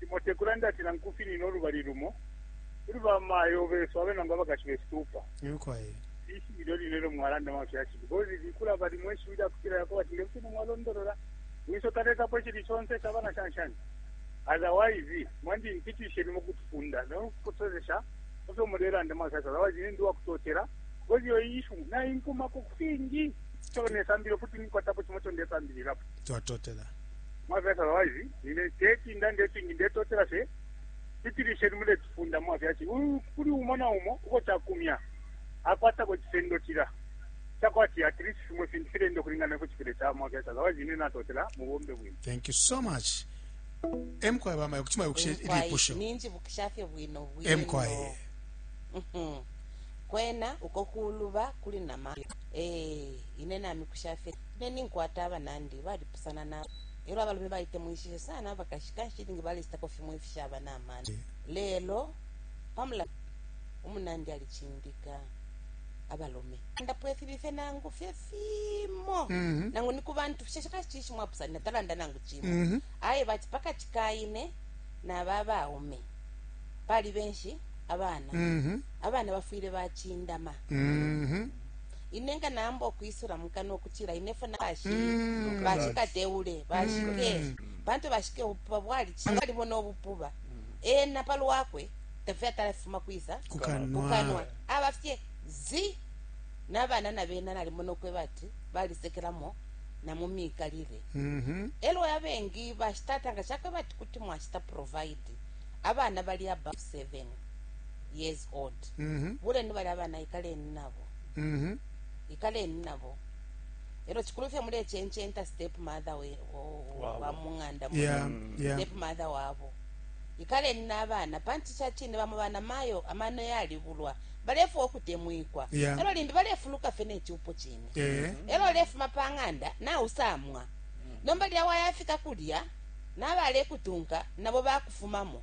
Limo te kulanda ati nangu kufinina ulubali lumo kuli bamayo besu abe nangu abakashi besu tuupa. Ishiwi ilyo line ilyo mwalanda mafyashi because likulaba limo ishiwi lya kutila yakoba ati nge fine mwalondolola wiso talekapo icili conse caba na shanshani otherwise mwandi ntitishe limo kutufunda no kutusozesha mu fyo mulelanda mafyashi otherwise nindi wa kutotela because iyo ishu nainkumako ku fingi ico nesambile futi nikwatapo cimo ico ndesambililapo twatotela Mwafyasha ba wise, nine teti ndande ifingi ndetotela fye pitilisheni muletufunda mwafyashi. Uyu kuli umo na umo uko cakumya akwatako icisendo cila cakwati at least fimo ifintu filenda ukulingana ne kucipile ca mwafyasha. Otherwise nine natotela mubombe bwino. Thank you so much. Emkwaye bamayo kuchima yokushe Emkwaye, ilipusho. ninjibukisha fye bwino bwino Emkwaye. Mhm. kwena uko kuluba kuli nama eh ine namikusha fye Ine ninkwata abanandi balipusana na elyo abalume balitemwishishe sana abakashi kanshi ilingi balecitako fimo ifishaba na mano. Lelo pa mulandu umunandi alicindika abalume, talandapo ifibi fye nangu fye fimo Mhm. nangu ni ku bantu fye shaka cishi mwapusanina talanda nangu cimo Mhm. aye bati pakati ka ine naba baume pali benshi abana Mhm. abana bafwile bacindama Mhm. ine nga naamba ukwisula mu kanwa ukutila ine fwe nashi mm. bashikateule bashike mm. pantu bashike ubupuba bwali balibona ubupuba ena pa lwakwe tafye atalafuma kwisa kukanwa aba fye zi n'abana na bena nalimona ukweba ati balisekelamo na mu miikalile mm-hmm. elo abengi bashitata nga shakweba ati kuti mwashita provide abana bali above seven years old mm-hmm. buleni bali abana ikaleni nabo mhm. ikaleni nabo elo chikulu fye mulechenchenta step mother wa mung'anda step mother wabo ikaleni n'abana panti cha chine bamo bana mayo amano yalibulwa balefa okutemwikwa yeah. elo limbi balefuluka fye nechupo chine yeah. elo lefuma pa ng'anda nausamwa mm. nomba lya wayafika kulya nabalekutunka nabo bakufumamo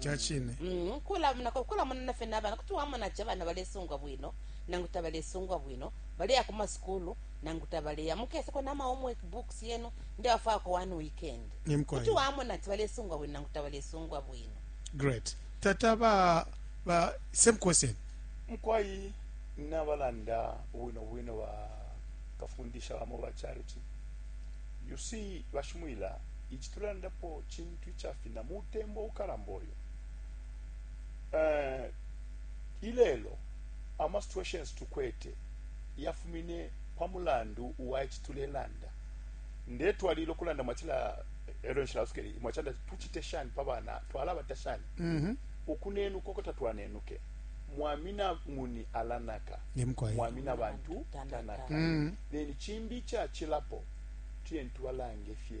Ca cine. Mm, ukulamunako ukulamunana fye nabana kuti wamona ati abana balesungwa bwino nangu tabalesungwa bwino baleya ku masukulu nangu tabaleya mukeseko nama homework books yenu ndewafwako one weekend Ni mkwai. kuti wamona ati balesungwa bwino nangu tabalesungwa bwino Great. Tata ba ba same question. mukwai nabalanda bwino bwino ba kafundisha bamo ba charity you see bashimwila ichi tulandapo chintu tu icafina mutembo ukalamba uyu uh, ilelo ama situations tukwete yafumine pa mulandu wa ici tulelanda ndetwalila okulanda mwatila ero nshilasukeli mwachanda tuchite shani pa bana twalabata shani mm -hmm. ukunenuka uko tatwanenuke mwamina nguni alanaka mwamina bantu tanaka mm -hmm. then chimbi chachilapo tuye ntubalange fye